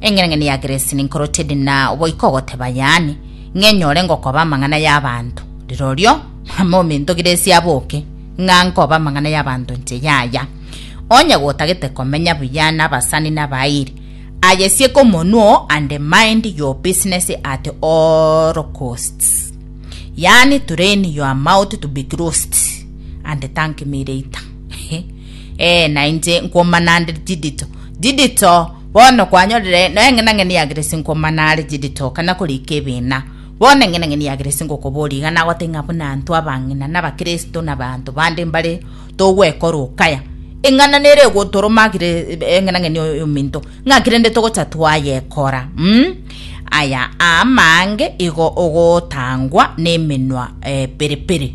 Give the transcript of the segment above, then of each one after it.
Engenang'ani ya Grace ninkorotie ndi na oboika ogoteba yaani, ng'a enyore ngokoba amang'ana y'abanto. Rirorio, mama ominto Grace aboke, ng'a nkobe amang'ana y'abanto inche yaya. Onye gotagete komenya buya n'abasani n'abairi, ayesieke omonwa oo and mind your business at all costs. Yaani train your mouth to be closed and thank me later. Ee, na inche nkomana nde chidito, chidito. Bono kwanyorire noe eng'enang'eni yageresi nkomana are chidito, kana korika ebina. Bono eng'enang'eni yageresi ngokoboria iga nagote ng'a buna anto abang'ina na abakristo na abanto bande mbare togwekora okaya. Eng'ana nere egotoroma agire eng'enang'eni oyo ominto, ng'aki rende togocha twayekora? Mm? Aya aamaange igo ogotangwa nemenwa eh, pere pere.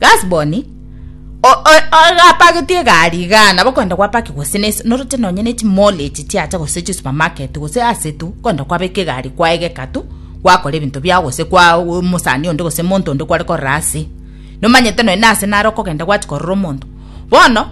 Gasboni, ogapagetie egari igaa nabo kwenda gwapaki gose noroche nonye ne chimall echi chiacha gose chisupermarket gose ase tu kwenda kwabeka egari kwaegeka tu gwakora ebinto biao gose kwa omosani onde gose monto onde kware korora ase nomanyete nonye nase nare okogenda gwachi korora omonto bono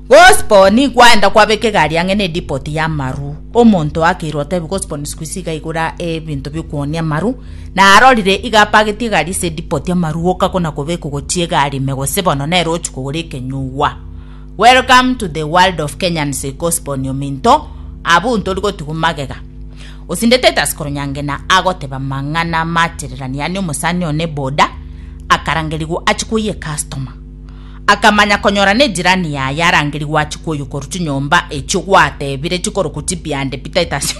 Gospo nikwaenda kwabeka egari ang'e ne depot y'amaru. Omonto oakeirwe otebia Gospo nisiko ise iga igora ebinto biokuonia amaru. Narorire iga apagetie egari ase edepot y'amaru goka kona kobekwa gochia egari ime gose bono nere ochia kogora ekenyugwa. Welcome to the world of Kenyans Gospo Nyominto abwo ntori gotigwa magega. Osinde Titus Koronyangena agoteba amang'ana amachererani yaani omosani one boda akarangerigwa achia koyia ecustomer. Akamanya konyora nejirani yaye arangeri gwachia kwoyokorwa chinyomba echio gwatebire chikorokwa chibiande pi Titus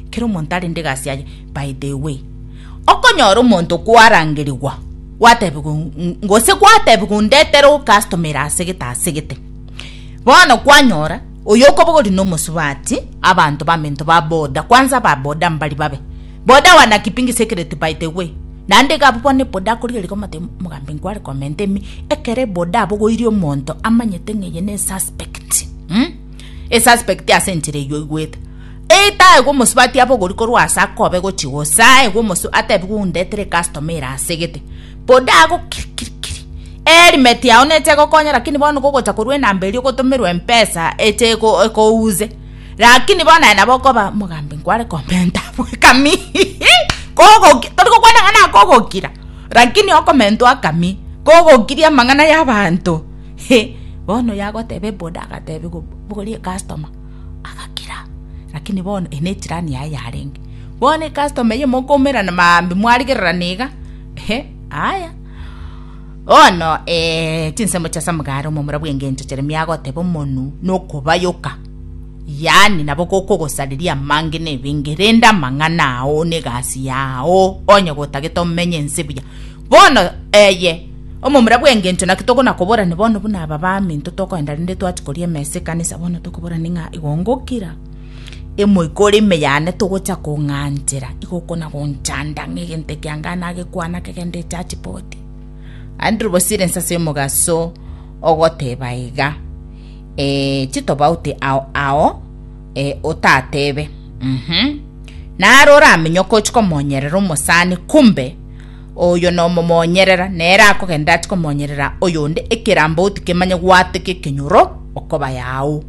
Kera omonto arende egasi yaye By the way okonyora omonto kwarangerigwa gwatebigwa gose gwatebigwa ondetere okastomere asegete asegete bono kwanyora oyo okobogori nomosubati abanto bamento ba boda kwanza ba boda mbari babe Boda wana kipingi secret by the way. Naende iga abwo bono boda akoria rigo omate omogambi nkware comment ime ekero boda abogoirie omonto amanyete ng'a eye ne suspect mm? E suspect ase enchera eyio oigwete etaegwe omosubati abogori korwa ase akobe gochi gose aegwe omosu atebigwe undetere customer ere asegete boda ago kiri kiri kiri helmet yao neche egokonya lakini bono gogocha korwa enamba eria ogotomerwa mpesa eche eko eko use Rakini bono aye nabo okoba omogambi nkware komenta bwekami kogoki tori gokwana ng'a nakogokira rakini okomentwa akami kogokiria amang'ana y'abanto he bono yagoteba eboda agateba igo bogoria ekastoma agakira rakini bono eye nejirani yaye yarenge bono ekastoma eyio mokoumera na maambia mwarigererana iga ehe aya. Bono, ee, chinsemo chia Samgari, omomura bw'engencho Yeremia agoteba omonu nokobayoka, yaani nabo gokogosareria amange nebenge, rende amang'ana ao negasi yao onye gotagete omenye ense buya. Bono, eye, omomura bw'engencho naki tokona koborani bono buna aba baminto tokoenda rende twachikoria emesa ekanisa bono tokoborani ng'a igongokira Emoika ore ime yane togocha kong'anchera, igo okona gonchanda ng'a egento ekianga nagekwana kegende echachi bote. Andrew bosire inse ase omogaso ogoteba iga eh, chitobauti ao ao eh, otatebe mhm naro oramenye okochi komonyerera omosani kumbe oyo nomomonyerera nere akogenda achi komonyerera oyonde ekerambauti kemanye gwateka ekenyoro okoba yao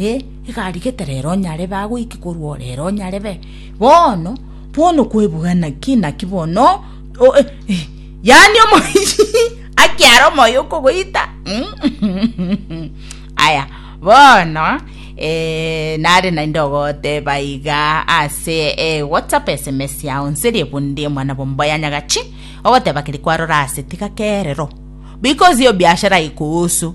Ee, egarigete rero nyare bagoike korwa o rero nyare be. Bono, bono kwebuga naki naki bono yaani akiare omoyo okogoita aya bono nare naende ogoteba iga ase whatsapp sms yao nserie bonde omwana bomba ya nyagachi ogoteba keri kwarora ase tiga kerero because iyo biashara ikuhusu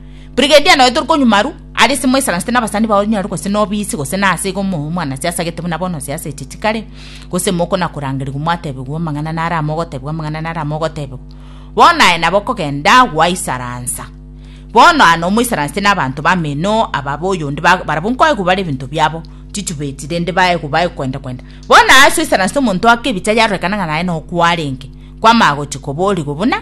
Brigedia noyo tori konyuma arwo, aria ase moisaransete nabasani bao onye arwo gose nobisi gose nase igo omoe omwanase asagete buna bono ase aseche chikare, gose mokona korangerigwa mwatebigwa amang'ana naro amo ogotebigwa amang'ana naro amo ogotebigwa. Bono aye nabo okogenda gwaisaransa. Bono aa nomoisaransete nabanto bameno aba boyonde ba- barabwo nkoegwa bare ebinto biabo chichubeti rende baegwa baegwa kwenda kwenda. Bono aa ase oisaransete omonto oake ebicha yarorekana ng'a naye nokwo arenge, kwamanya gochia koborigwa buna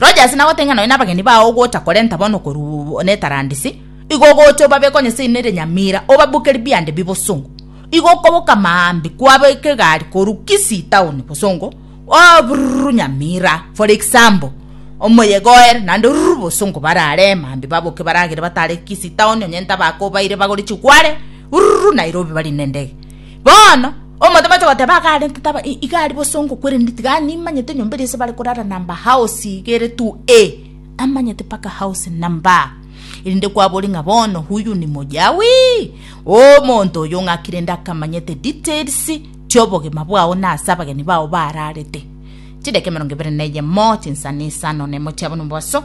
Roche ase nagoteng'ena nonya nabageni bao ogocha korenta bono korwa netarandisi, igo ogocha obabe konya ase erinde erenyamira, obabuke ribiande bibosongo. Igo okoboka amaambi kwabe kegari korwa Kisii town bosongo, oo brrrr nyamira for example, omoyega oere naende rrrr bosongo barare maambi baboke baragere batare Kisii town nonya ntabakobaire bagore chigware rrrr Nairobi bari nendege. Bono omotomwa acha goteba akarente taba iga aria bosongo kwerende tiga animanyete enyomba eria ase bare korara namba house iga ere tu e amanyete mpaka house namba erinde kwabori ng'a bono huyu ni mojawi omonto oyo ng'akire nde akamanyete details chiobogima bwao na ase abageni bao bararete chidaka emerongo ebere na eyemo chinsana isano na emo chiabo na omobaso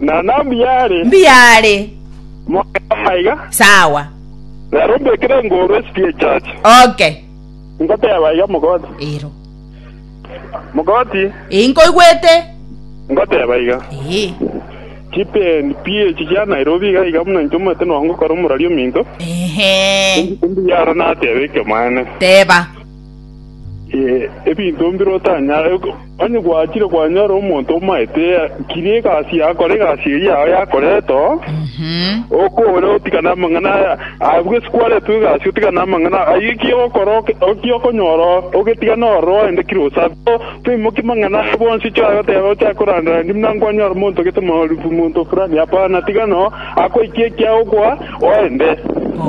Na nambi yare Mbuya are. moyo maiga, Sawa. rero mbekire ngoru esiki y'echache. Okay. Ngoteba iga mogoti. Ero. Mogoti, Ee, nkoigwete. ngoteba iga. Ee. Chipen PH chia Nairobi iga iga buna inche omanyete nogokora omorari ominto. Ehe. Mbuya aro nateba ekemanne. Teba. ebinto mbire otanyare. Onye gwachire kwanyora omonto omaete kirie egasi yakora egasi eye yao yakorete oo, okore otigane amang'ana aya, abwo ase kwaretwe egasi otigane amang'ana aya. Ayio ekiagera ogokora ekiagera okonyora oo, ogetigane ororo oende kire osabe. Toimokia amang'ana aya bonsi oche goteba ochake korandereria buna nkwanyora omonto gete monto fulani, hapana, tigana oo, akoikie ekiagokoa oende.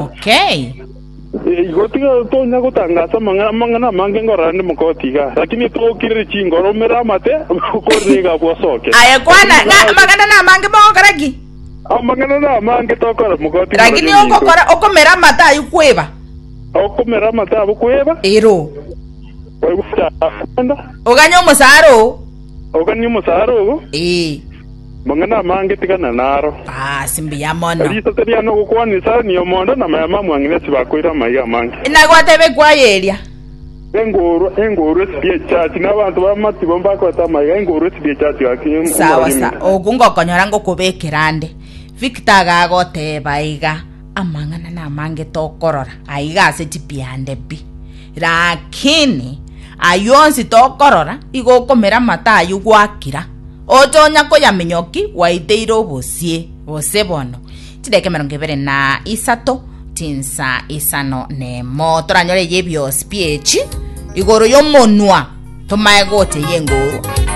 Okay. Igo tiga tonya gotangaasa amang'ana amange ngorora nde mokooti igaa, lakini tookirere chingoro, omere amate, okorere iga abwo osooke. Aye kwana, na amang'ana namange mogokora ki? Amang'ana namange tokora mokooti ngorora Lakini ninto. ogokora okomera amate ayio kweba. Okomera amate abo kweba, Ero. oigwe omosaara okwenda, Oganye omosaara oo. oganie omosaara ogo. Ee. Mang'ana amange tigana naro. Ase mbuya mono. Risase riane ogokwana isare niomonda, na amayama amwang'ina ase bakoire amaiga amange. Naye gwateba ekwaya eria. Engoorwa, engoorwa esibie echachi, na abanto b'amatibo mbakorete amaiga, engoorwa esibie echachi gaki, omorori Sawa sa, emegati. oku ngokonyora ngokobekera ande. Victor agagoteba iga, Amang'ana namange tokorora aiga ase chipiande pi. Lakini ayio onsi tokorora, igo okomera amato ayio gwakira. Otonya koyaminyoki gwaiteire obosie, gose bono, chideka emerongo ebere na isato, chinsa isano nemo. Toranyore eyebiosi biechi igoro yomonwa, tomae gocha eyengorwa.